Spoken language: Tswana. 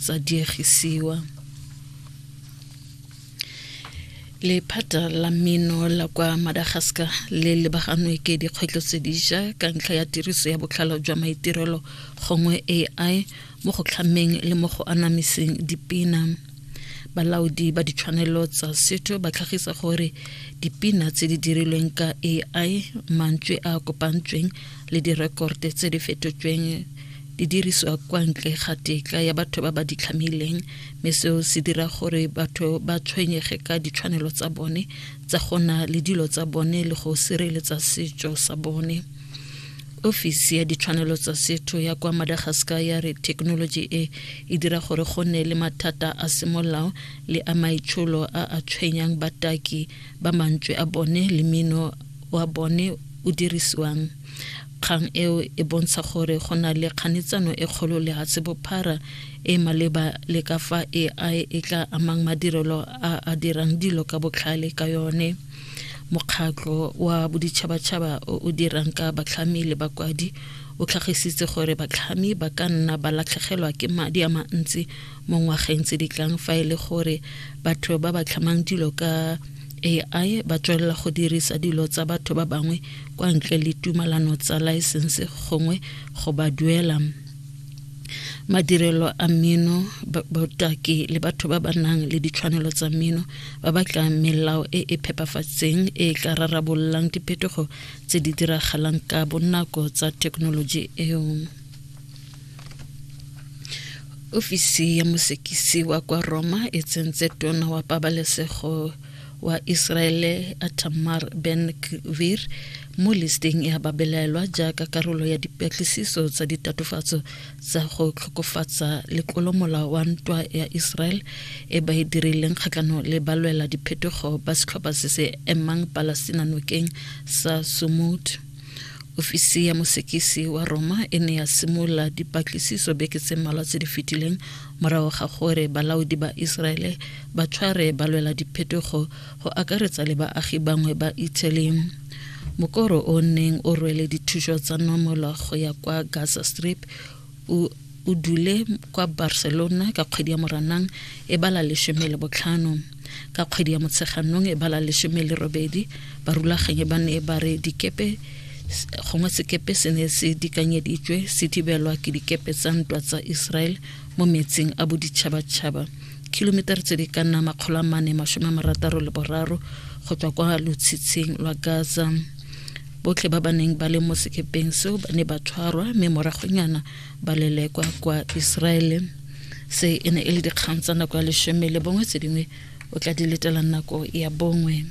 tsa diegisiwa lephata la mmino la kwa madagascar le lebaganwe ke dikgwetlho tse diša ka ntlha ya tiriso ya botlhalo jwa maitirelo gongwe ai mo go tlhameng le mo go anamiseng dipina balaodi ba ditshwanelo tsa setho ba tlhagisa gore dipina tse di dirilweng ka ai mantswe a kopantsweng le direkorte tse di fetotsweng di diriswa kwa ntle ga tetla ya batho ba ba di tlhamileng mme seo se dira gore batho ba tshwenyege ka ditshwanelo tsa bone tsa go na le dilo tsa bone le go sireletsa setso sa bone ofisi ya ditshwanelo tsa setho ya kwa madagascar ya re thekenoloji e e dira gore go nne le mathata a semolao le a maitsholo a a tshwenyang bataki ba mantswe a bone le mino wa bone o dirisiwang Kgang eo e bontsha gore go na le kganetsano e kgolo lehatshe bophara e maleba le ka fa AI e tla amang madirelo a a dirang dilo ka botlhale ka yone. Mokgatlho wa boditšhabatšhaba o o dirang ka batlhami le bakwadi o tlhagisitse gore batlhami ba ka nna ba latlhegelwa ke madi a mantsi mo ngwageng tse di tlang fa e le gore batho ba ba tlhamang dilo ka AI ba tswelela go dirisa dilo tsa batho ba bangwe kwa ntle le tumalano tsa laesense gongwe go ba duela madirelo a mmino botaki le batho ba ba nang le ditshwanelo tsa mmino ba batla melao e e phepafatseng e e tla rarabollang diphetogo tse di diragalang ka bonako tsa thekenoloji eo ofisi ya mosekisi wa kwa roma e tsentse tona wa pabalesego wa Iseraele a Tamar Ben Gvir mo listeng ya babelaelwa jaaka karolo ya dipatlisiso tsa ditatofatso tsa go tlhokofatsa letlolomolao wa ntwa ya Israel e ba e dirileng kgatlhanong le balwela diphetogo ba setlhopha se se emang Palestina nokeng sa Sumud. Ofisi ya mosekisi wa Roma e ne ya simolola dipatlisiso beke tse mmalwa tse di fetileng Morago ga gore balaodi ba Iseraele ba tshware balwela diphetogo go akaretsa le baagi bangwe ba Italy, mokoro o neng o rwele dithuso tsa nomola go ya kwa Gaza Strip o o dule kwa Barcelona ka kgwedi ya Moranang e bala lesome le botlhano. ka kgwedi ya motsheganong e bala lesome le robedi barulaganyi ba ne ba re dikepe gongwe sekepe se ne se dikanyeditswe se thibelwa ke dikepe tsa ntwa tsa israel mo metsing a boditšhabatšhaba kilomitara tse di ka nna makgolo a mane masome a marataro le boraro go tswa kwa lotshitshing lwa gaza botlhe ba ba neng ba le mo sekepeng seo ba ne ba tshwarwa mme moragonyana ba lelekwa kwa iseraele se e ne e le dikgang tsa nako ya lesome le bongwe tse dingwe o tla di letelang nako ya bongwe